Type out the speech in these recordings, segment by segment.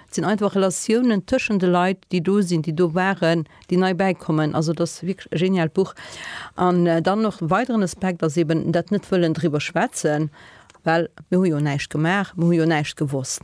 Et sinn einfach Relatiounen tëschen de Leit, déi do sinn, déi do waren, déi nei bäikommen. Also et ass wierklech e geniaalt Buch. An dann och e weideren Aspekt ass eeben dat net wëllen driwwer schwätzen, well mir hu jo näischt gemaach, mir hu jo näischt gewosst.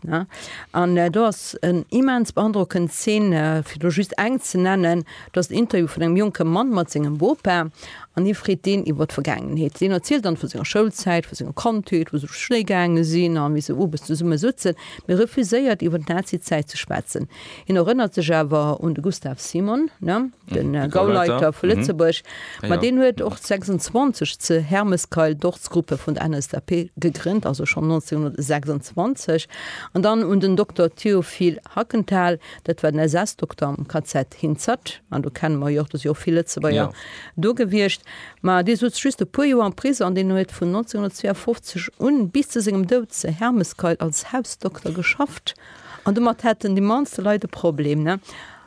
An do ass en immens beandrockend Zeen, fir do just eng ze nennen, do ass en Interview vun engem jonke Mann mat sengem Bopa an hie freet deen iwwer d'Vergaangenheet. Deen erzielt dann vu senger Schoulzäit, vu senger Kandheet, wou se op Schléi gaange sinn a wéi se owes zesumme souzen. Mee refuséiert iwwer d'Nazizäit ze schwätzen. Hien erënnert sech awer un de Gustav Simon, den Gauleiter vu Lëtzebuerg, ma deen huet och 26 ze Hermeskeil d'Ortsgruppe vun der NSDAP gegrënnt, also schonn 1926, an dann un den Dokter Théophile Hackenthal, dat war den SS-Dokter am KZ Hinzert, an do kenne mer jo och, do si och vill Lëtzebuerger do gewiescht. Mä dee souz just e puer Joer am Prisong an deen huet vun 1952 un bis zu sengem Doud zu Hermeskeil als Hausdokter geschafft. An domat hätten déi mannste Leit e Problem, ne?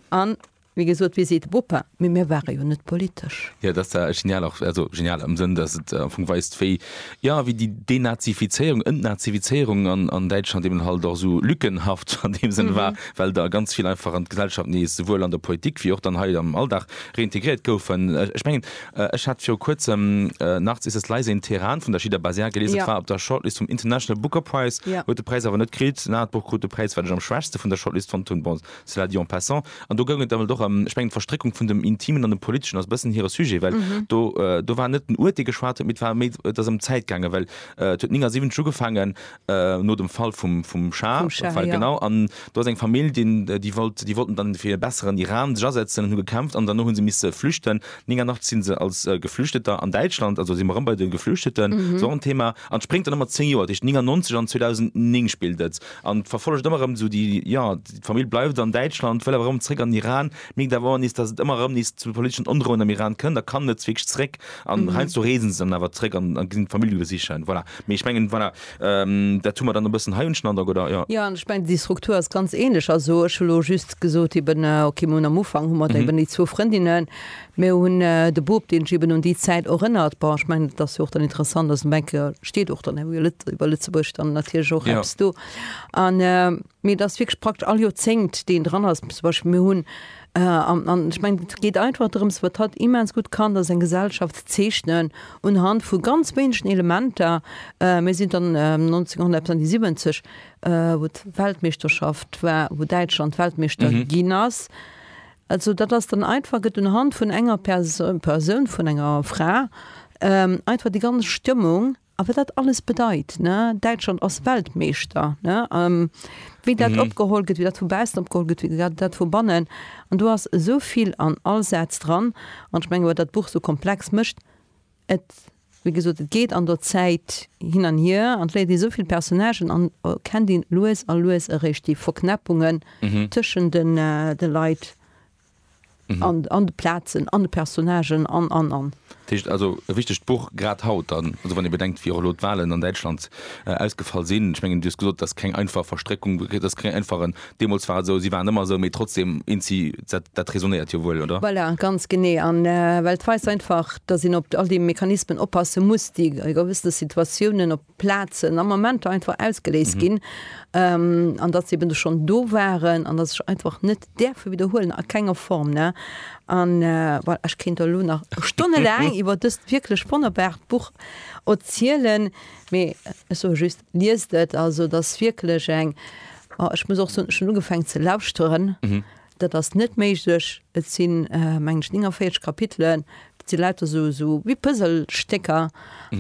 An, wéi gesot, wéi seet de Bopa, mee mir ware jo net politesch. Jo, dat ass da genial och, also genial am Sënn, datt et am Fong weist, wéi, jo, wéi déi Denazifizéierung, Entnazifizéierung an, an Däitschland eben halt och esou lückenhaft an deem Sënn war, well der ganz vill einfach an d'Gesellschaft nees, souwuel an der Politik wéi och dann hei am Alldag, Reintegréiert goufen. Ech mengen, ech hat viru kuerzem Nachts ist es leise in Teheran vun der Shida Baziar geliesen. Et war op der Shortlist vum International Booker Prize, huet de Präis awer net kritt. En anert Buch krut de Präis, wat ech am schwächste vun der Shortlist fonnt hunn, bon, cela dit en passant. An do goung et dann och ëm, ech mengen, d'Verstréckung vun dem Intimen an dem Politeschen ass e bëssen hire Sujet, well do, do war net den Uert, dee geschwat huet, mee et war méi, et ass ëm d'Zäit gaangen, well et huet 79 ugefaangen, no dem Fall vum vum Schah vum Schah, ja. Genau an do ass eng Famill deen déi wollt déi wollten dann fir e besseren Iran sech asetzen an hu gekämpft an dann hu se misse flüchten. 89 sinn se als Geflüchteter an Däitschland, also si mer erëm bei de Geflüchteten, ass och en Thema an spréngt dann ëmmer 10 Joer tëscht 99 an 2009 spillt et an verfollegt ëmmer erëm esou déi, jo d'Famill bleift an Däitschland, wëll awer erëm zréck an Iran, Mirkt awer och nees, datt et ëmmer erëm nees zu politeschen Ondroen am Iran kënnt a kann net wierklech zeréck. An heiansdo reesen se dann awer zeréck an ginn d'Famill besichen. Voilà. Mee ech mengen, voilà, dat hu mer dann e bëssen hei, hunn ech den Androck, oder? Jo. Jo, an ech mengen, déi Struktur ass ganz ähnlech. Also ech hu elo just gesot eben, okay, mir hunn am Ufank hu mer eben déi zwou Frëndinnen, mir hunn de Bub, deen sech eben un déi Zäit erënnert. Bon, ech mengen, et ass jo och dann interessant, also ech denke, steet och dann iwwer Lëtzebuerg dann natierlech och eppes do. An. Mee et ass wierklech praktesch all Joerzéngt, deen dran ass. Zum Beispill, mir hunn, an ech mengen, et geet einfach drëms, wat hatt immens gutt kann, ass eng Gesellschaft ze zeechnen unhand vu ganz wéinegen Elementer. Mir sinn dann 1970, wou d'Weltmeeschterschaft war, wou Däitschland Weltmeeschter ginn ass. Also dat ass dann einfach, gëtt unhand vun enger Persoun, vun enger Fra einfach déi ganz Stëmmung. A wat dat alles bedeit. Däitschland ass Weltmeeschter, wéi dat opgeholl gëtt, wéi dat vu baussen opgeholl gëtt, wéi dat vu bannen. An do ass esou vill an all Saz dran. An ech mengen, wat dat Buch esou komplex mécht, et, wéi gesot, et geet an der Zäit hin an hier an et léiert ee esou vill Personnagen an kennt een lues a lues eréischt déi Verknäppungen tëschent de Leit. an de Plazen, an de Personnagen an, an, an. Dat heescht also e wichtegt Buch, grad haut dann, also wann ee bedenkt wéi och elo d'Wahlen an Däitschland ausgefall sinn. Ech mengen, Dir hutt gesot, dat ass keng einfach Verstréckung, dat ass keng einfach en, deemools war et esou, si waren ëmmer esou, mee trotzdeem eent si, dat räsonéiert jo wuel, oder? Voilà, ganz genee. A well et weist einfach, datt een op all déi Mechanismen oppasse muss, déi a gewëssene Situatiounen op. Plazen a Momenter einfach ausgeléist ginn, an datt se eben schonn do waren an datt ech einfach net däerfe widderhuelen, a kenger Form. An voilà, ech kéint der elo nach stonnelaang iwwer dëst wierklech wonnerbart Buch erzielen, mee ech soe just, Liest et! Also et ass wierklech eng, ech muss och soen, ech hunn ugefaangen ze lauschteren, Dat ass net méiglech. Et sinn, mengen ech, 49 Kapitelen. Dat si lauter esou wéi Puzzlestécker.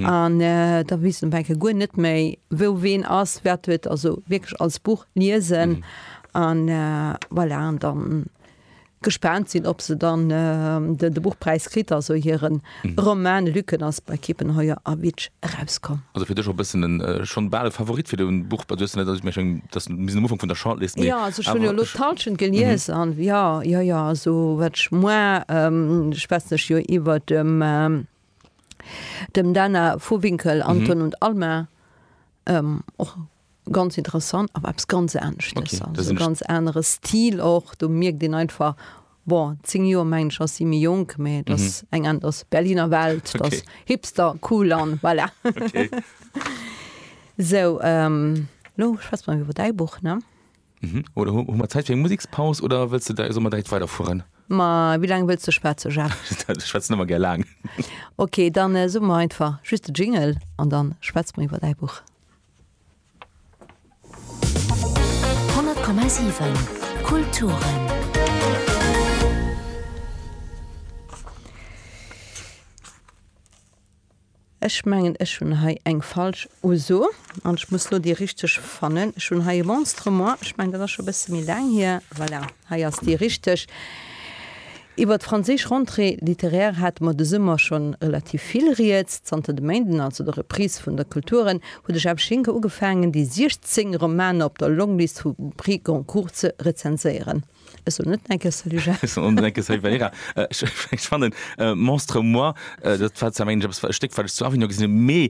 An da weess een op eng Kéier guer net méi, wou ween ass, wat huet. Also wierklech als Buch liesen an, voilà, an da gespaant sinn, ob se dann de Buchpräis kritt, also hiren Romain Lücken ass bei Kiepenheuer a Bitsch erauskomm. Also fir dech och bëssen en schonn bal e Favorit fir den Buch bei du hues net also ech meng schonn dass en bis am Ufank vun der Shortlist mee awer ech. Jo also ech hunn jo elo d'Hallschent gelies an jo jo jo also wat ech moarn schwätzen ech jo iwwert dem dem Dana Vohwinkel Anton und Alma och Ganz interessant, awer eppes ganz anescht. Okay, dat sinn ech. Ganz anere Stil och. Do mierkt een einfach, bon, 10 Joer mengen ech ass si méi jonk, mä et ass eng an, et ass Berliner Welt, et ass Hipster, cool an voilà. Okay. Sou, elo schwätze mer iwwer däi Buch, ne? Oder hu mer Zäit fir eng Musekspaus oder wëlls de, solle mer direkt weiderfueren? Ma wéi laang wëlls de schwätze, Jacques? Ech schwätzen ëmmer gär laang. Okay, dann soe mer einfach just de Jingle an dann schwätze mer iwwer däi Buch. 100,7 Kulturen Ech mengen ech hunn hei eng falsch Uso an ech muss lo déi richteg fannen. Ech hunn hei e Monstre moi, ech mengen dat ass scho e bësse méi laang hier, voilà. Hei ass déi richteg. Iwwer d'franséisch Rentrée littéraire hate mer de Summer scho relativ vill Rieds. Zanter de Méinden, also der Reprise vun der Kulturen, huet de Jeff Schinker ugefaangen, déi 16 Romaner op der Longlist vum Prix Goncourt ze rezenséieren. Ech soen net Neckes, salut Jeff. Ech soen och net Neckes, salut Valerija. Ech fannen Monstre moi, dat war zwar mengen ech eppes, e Stéck, wat ech zu Avignon gesinn hunn, mee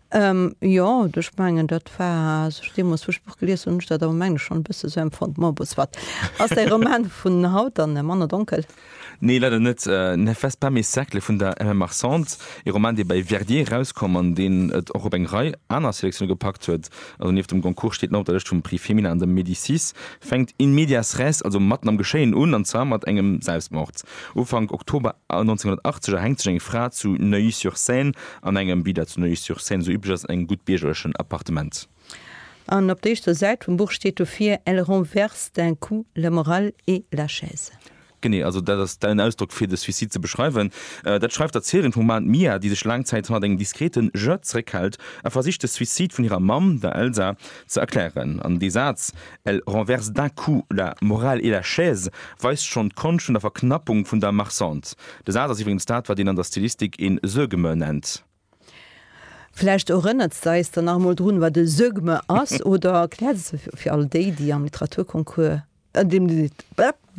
Jo, ech mengen dat war, als ech deemools vum Spuch gelies hunn, hunn ech dat awer mengen ech schonn e bësse esou empfonnt. Bon, bon, soit. Ass däi Roman vun haut dann manner donkel? Nee, leider net. Ne fais pas mes cercles vun der MM. Marchand, ee Roman, dee bäi Verdier erauskoum an deen et och op eng Rei aner Selectione gepackt huet. Also nieft dem Goncourt steet nach op der Lëscht vum Prix Femina an dem Médicis. Fänkt in medias res, also matten am Geschéien un, an zwar mat engem Selbstmord. Ufank Oktober 1980 erhänkt sech eng Fra zu Neuilly-sur-Seine An engem Vida zu Neuilly-sur-Seine, sou üblech ass, engem gutt biergerlechen Appartement. An op der éischter Säit vum Buch steet dofir, Elle renverse d'un coup la morale et la chaise. Genee, also dat ass den Ausdrock, fir de Suicide ze beschreiwen. Dat schreift d'Erzieherin vum Roman, d'Mia, déi sech laang Zäit hannert engem diskrete Je zeréckhält a versicht, de Suicide vun hirer Mamm, der Elsa, ze erklären. An dee Saz, Elle renverse d'un coup la morale et la chaise weist schonn d'Konscht vun der Verknappung vun der Marchandise. De Saz ass iwwregens dat, wat een an der Stilistik een Sögme nennt. Vläicht erënnert se eis dann nach emol drun, wat e Sögme ass, oder erkläert se fir all déi, déi am Literaturconcours, an deem se.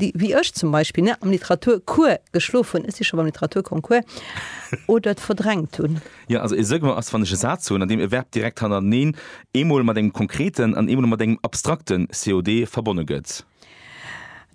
déi wéi ech zum Beispill am Literaturcours geschlof hunn, ech si scho beim Literaturconcours, oder et verdrängt hunn. Jo, also e Segment ass, wann ech e Saz hunn, an deem e Verb direkt hannereneen eemol mat engem konkreten an eemol mat engem abstrakte COD verbonne gëtt.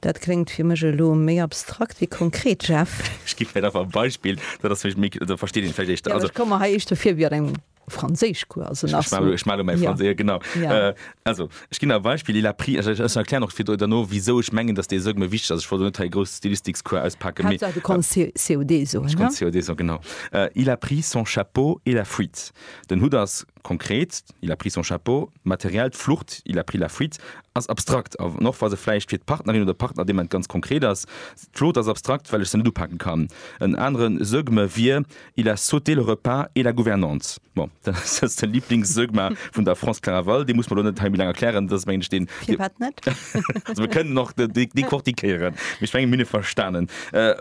Dat kléngt fir mech elo méi abstrakt wéi konkret, Jeff. Ech gi vläicht einfach e Beispill, dat ass vläicht méi, da versteet een et vläicht éischter. Jo, ech komme hei éischter vir wéi an engem. Franséischcours also nach so. Ich mache mein Französisch, ja. genau. Ja. Äh, also, ich gebe ein Beispiel, il a pris, also ich, ich erkläre noch viel danach, wieso ich meine, dass der so mir wichtig ist. Also, ich wollte nicht einen großen Stilistikscours auspacken. Kannst du kannst äh, COD so, Ich kann ne? COD so, genau. Äh, il a pris son chapeau et la fuite. Den Hut ist konkret, il a pris son chapeau, materiell, die Flucht, il a pris la fuite, ist abstrakt. Aber noch, was er vielleicht für die Partnerin oder Partner dem ganz konkret ist. Die Flucht ist abstrakt, weil ich sie nicht upacken kann. Einen anderen, sag mir, wir, Il a sauté le repas et la gouvernance. Bon, dat ass jetzt den Lieblingsdogma vun der France Claraval. Dee muss mer elo net hei méi laang erklären. Dat ass, mengen ech, deen, Fir wat net? also mir kënnen och de, de, dekortikéieren. Mee ech menge mir hunn e verstanen. Äh,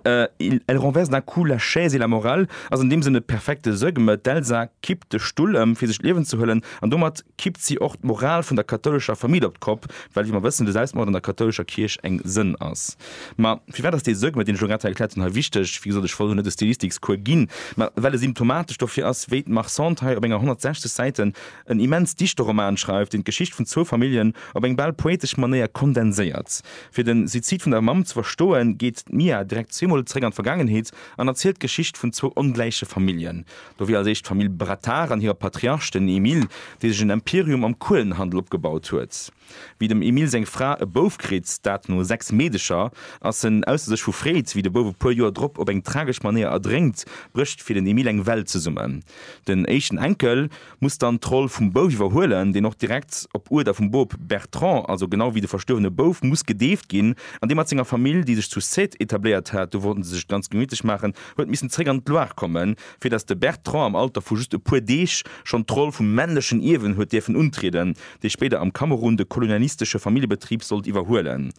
äh, il, elle renverse d'un coup la chaise et la morale ass an deem Sënn e perfekte Sögme. D'Elsa kippt de Stull ëm, fir sech d'Liewen ze huelen. An domat kippt si och d'Moral vun der kathoulescher Famill op d'Kopp, well, wéi mer wëssen, de Selbstmord an der kathoulescher Kierch eng Sënn ass. Ma firwat ass dee Segment, deen ech elo grad hei erkläert hunn, hei wichteg? Wéi gesot, ech wollt elo net e Stilistikscours ginn, mä well e symptomatesch dofir ass, wéi d'Mar Sand hei op enger 160 Säiten en immens dichte Roman schreift, deen d'Geschicht vun zwou Familljen op eng bal poetesch Manéier kondenséiert. Fir den Suizid vun der Mamm ze verstoen, geet d'Mia direkt zweemol zeréck an d'Vergaangenheet an erzielt d'Geschicht vun zwou ongläiche Familljen. Do wier als éischt d'Famill Brattard an hire Patriarch, den Emile, dee sech en Imperium am Kuelenhandel opgebaut huet. Wéi dem Emil seng Fra e Bouf kritt, dat no 6 Meedecher, ass en ausser sech vu Freed. Wéi de Bouf e puer Joer drop op eng tragesch Manéier erdrénkt, brécht fir den Emil eng Welt zesummen. Den éischten Enkel muss dann d'Roll vum Bouf iwwerhuelen, deen och direkt op Uerder vum Bop Bertrand, also genau wéi de verstuerwene Bouf, muss gedeeft ginn an dee mat senger Famill, déi sech zu Sète etabléiert hat, do wollten se sech et ganz gemiitlech maachen, huet missen zréck an d'Loire kommen, fir datt de Bertrand am Alter vu just e puer Deeg schonn d'Roll vum männlechen Ierwen huet dierfen untrieden. dee spéider am Kamerun de kolonialistesche Familljebetrib sollt iwwerhuelen.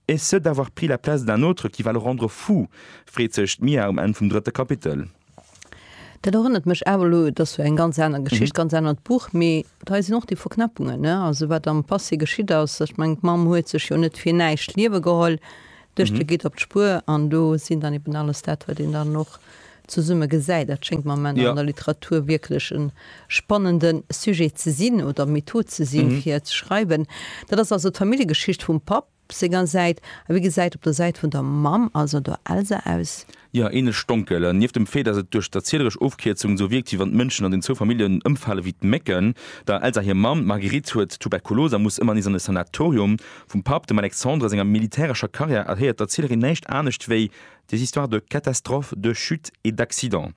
Et ce d'avoir pris la place d'un autre qui va le rendre fou, freet sech d'Mia um Enn vum drëtte Kapitel. Dat erënnert mech awer elo, et ass jo eng ganz aner Geschicht, ganz anert Buch, mee et hei sinn och déi Verknäppungen, ne? Also wat am Passé geschitt ass, ech mengen d'Mamm huet sech jo net fir näischt d'Liewe geholl, Duerch de Guide op d'Spuer, an do sinn dann eben alles dat, wat een dann och zesumme gesäit. Dat schéngt mer am Ende an der Literatur wierklech e spannende Sujet ze sinn oder Method ze sinn, fir ze schreiwen. Dat ass also d'Familljegeschicht vum Papp senger Säit. A wie gesäit op der Säit vun der Mamm, also der Elsa, aus? Jo, änlech donkel. Nieft dem Fait, dass et duerch d'erzieleresch Ofkierzung sou wierkt, wéi wann d'Mënschen an den zwou Familljen ëmfale wéi d'Mécken. Der Elsa hir Mamm, d'Marguerite, huet Tuberkulos a muss ëmmer nees an e Sanatorium. Vum Papp, dem Alexandre, senger militärescher Karriär erhéiert d'Erzielerin näischt anescht wéi des histoires de catastrophes, de chutes et d'accidents.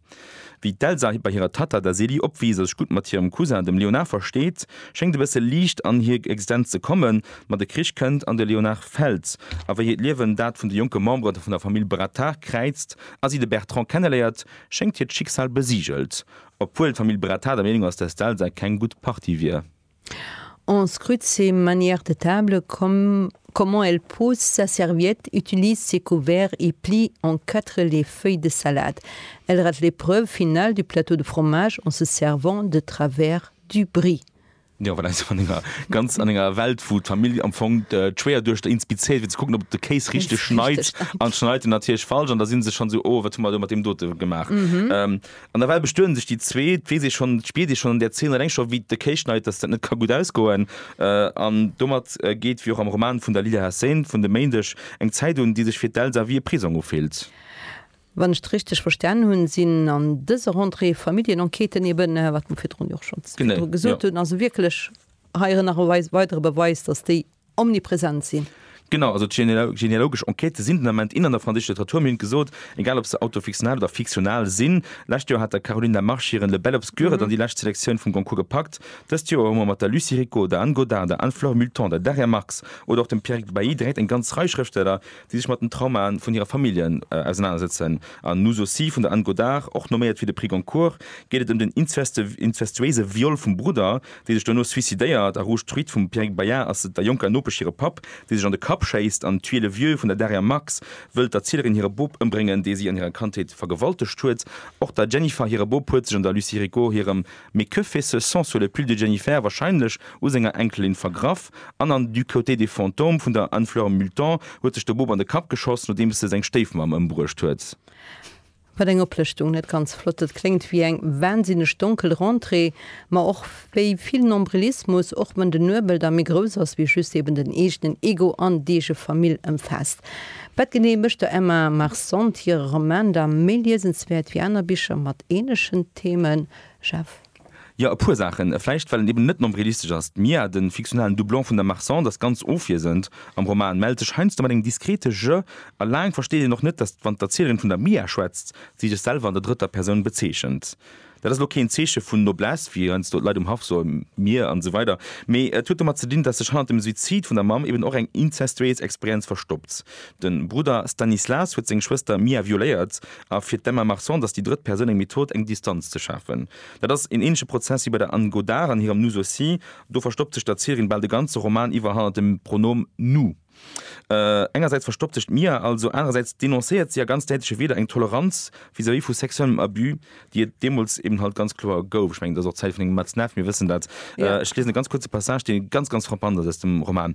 Wéi d'Elsa bei hirer Tatta, der Célie, opwiisst a sech gutt mat hirem Cousin, dem Léonard, versteet, schéngt e bësse Liicht an hir Existenz ze kommen. Ma de Krich kënnt an de Léonard fält. A wéi hiert Liewen dat vun de jonke Membere vun der Famill Brattard kräizt a si de Bertrand kenneléiert, schéngt hiert Schicksal besigelt. Obwuel d'Famill Brattard der Meenung ass, dass d'Elsa keng gutt Partie wier. En scrute ses manières de table, comme, comment elle pose sa serviette, utilise ses couverts et plie en quatre les feuilles de salade. Elle rate l'épreuve finale du plateau de fromage en se servant de travers du brie. Jo, voilà, esou an enger ganz, an enger Welt, wou d'Famill am Fong d'Schwéierduechter inspizéiert, fir ze kucken, ob et de Kéis richteg schneit, an schneit en natierlech falsch, an da si se schonn esou, oh, wat hu mer do mat deem dote gemaach. An nawell bestueden sech déi zwee, et weess ee schonn, et spiert ee schonn an där Zeen alleng scho wéi d'Occasionhait, datt dat net ka gutt ausgoen. An domat geet, wéi och am Roman vun der Lila Hassain vun de Méindeg, eng Zäit un, déi sech fir d'Elsa wéi e Prisong ufillt. Wann ech et richteg verstanen hunn, sinn an dëser Rentrée Familljenenquêten eben, wat mer virdrun jo och schonns virdru gesot hunn, also wierklech hei erëm nach e weidere Beweis, datt déi omnipresent sinn. Genau, also d'genealogesch Enquêtë sinn den Ament in an der franséischer Literatur. Mir hunn et gesot, egal ob se autofiktional oder fiktional sinn. Lescht Joer hat der Caroline Lamarche hiren Le Bel Obscur et an déi lescht Selektioun vum Goncourt gepackt. Dëst Joer hu mer mat der Lucie Ricot, der Anne Godart, der Anne-Flore Multon, der Daria Marx oder och dem Pierrick Bailly direkt eng ganz Rei Schrëftsteller, déi sech mat den Traumaen vun hire Familljen ausenanersetzen. An Nous aussi vun der Anne Godart, och noméiert fir de Prix Goncourt, geet et ëm den inzestuéise Viol vum Brudder, déi sech duerno suicidéiert, a Rouge Truite vum Pierrick Bayard ass et der jonker Nopesch hire Papp, dee sech an de Kapp schéisst, an Tuer le vieux vun der Daria Marx wëllt der Zielerin hire Bop ëmbréngen, dee si an hirer Kandheet vergewaltegt huet. Och der Jennifer hire Bop huet sech an der Lucie Rigaud hirem Mais que fait ce sang sur le pull de Jennifer? warscheinlech u senger Enkelin vergraff, an an Du côté des fantômes vun der Anne-Fleur Multon huet sech de Bop an de Kapp geschoss, nodeems e seng Stéifmamm ëmbruecht huet. Wat eng Oplëschtung, net ganz flott. Et kléngt wéi eng wahnsinneg donkel Rentrée, ma och wéi vill Nombrilismus, och wann den Nuebel da méi grouss ass, wéi just eben den eegenen Ego an d'eege Famill ëmfaasst. Wat genee mécht der Emma Marcent hire Roman da méi liesenswäert wéi aner Bicher mat ähnlechen Themen? Jeff. Jo, e puer Saachen. Vläicht well en eben net nombrilistesch ass. D'Mia, de fiktionalen Doublon vun der Marcande, ass ganz ofwiesend am Roman, mellt sech heiansdo mat engem diskrete Je a laang versteet een och net, datt wann d'Erzielerin vun der Mia schwätzt, si sech selwer an der drëtter Persoun bezeechent. Dat ass elo keen Zeeche vun Noblesse, wéi heiansdo d'Leit um Haff soen, mir an esou weider, mee et huet domat ze dinn, datt sech hannert dem Suizid vun der Mamm eben och eng inzestuéies Experienz verstoppt. De Brudder Stanislas huet seng Schwëster Mia violéiert a fir d'Emma Marsan, dass déi drëtt Persoun eng Method, eng Distanz ze schafen. Dat ass een ähnleche Prozess wéi bei der Anne Godard an hirem Nous aussi. Do verstoppt sech d'Erzieherin bal de ganze Roman iwwer hannert dem Pronom nous. Engersäits verstoppt sech d'Mia also, anerersäits denoncéiert si a ganz däitleche Wieder eng Toleranz vis-à-vis vu sexuellem Abus, déi et deemools eben halt ganz kloer gouf. Ech mengen, et ass och d'Zäit vun engem Matzneff, mir wëssen dat. Ech liesen e ganz kuerze Passage, dee ganz, ganz frappant ass aus dem Roman.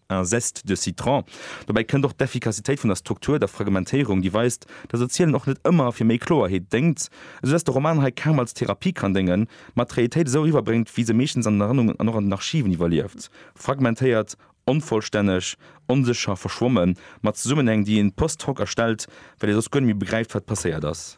un zeste de citron. Dobäi kënnt och d'Effikassitéit vun der Struktur, der Fragmentéierung, déi weist, datt Erzielen och net ëmmer fir méi Kloerheet déngt, esou datt de Roman hei kaum als Therapie kann déngen, ma d'Reeltéit esou eriwwerbréngt, wéi se meeschtens an den Erënnungen an och an den Archiven iwwerlieft, fragmentéiert, onvollstänneg, onsécher, verschwommen, mat Zesummenhäng, déi een post hoc erstellt, well ee soss guer net méi begräift, wat passéiert ass.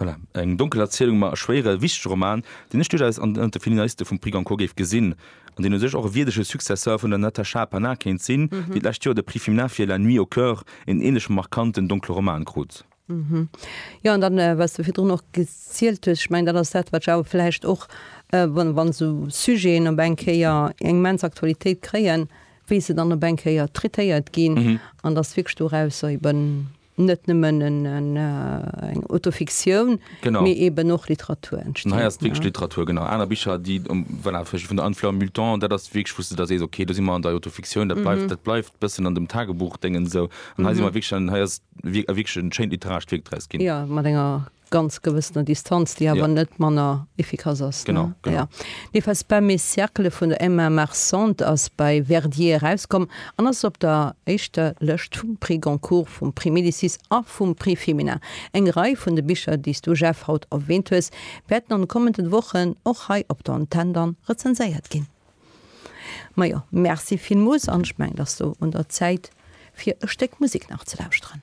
Voilà, eng donkel Erzielung, ma e schwéiere, wichtege Roman, deen ech duerchaus an ënnert de Finaliste vum Prix Goncourt géif gesinn, an deen u sech och e wierdege Successeur vun der Natacha Pannar kéint sinn, déi d'lescht Joer de Prix Fimnar fir La nuit au cœur, een änlech markanten donkle Roman, krut. Jo, an dann, wat s de virdrun och gezielt hues, ech mengen, dat ass dat, wat ech awer vläicht och, wa sou Sujeten op eng Kéier eng immens Aktualitéit kréien, wéi se dann op eng Kéier traitéiert ginn, an dass wierklech dorausser eben. net nëmmen eng Autofiktioun, mee eben och Literatur entsteet. Hei ass wierklech Literatur, genau. Aner Bicher, déi, voilà, vläicht vun der Anne-Fleur Multon, dat ass wierklech, wou s de da sees, okay, do si mer an der Autofiktioun, dat bleift, dat bleift e bëssen an dem Tagebuchdéngens esou. An hei si mer wierklech, hei ass wierklech e schéint literarescht Wierk draus ginn. Jo, mat enger ganz gewëssener Distanz, déi awer net manner efficace ass. Genau, genau. Ja. Nee, was bei mes Cercles vun der Emma Marcent ass bei Verdier erauskomm an ass op der éischter Lëscht vum Prix Goncourt, vum Prix Médicis a vum Prix Femina. Eng Rei vun de Bicher, déi s du, Jeff, haut erwähnt hues, wäerten an de kommenden Wochen och hei op der Antenn dann rezenséiert ginn. Majo, merci villmools an ech mengen, et ass elo un der Zäit fir e Stéck Musik nach ze lauschteren.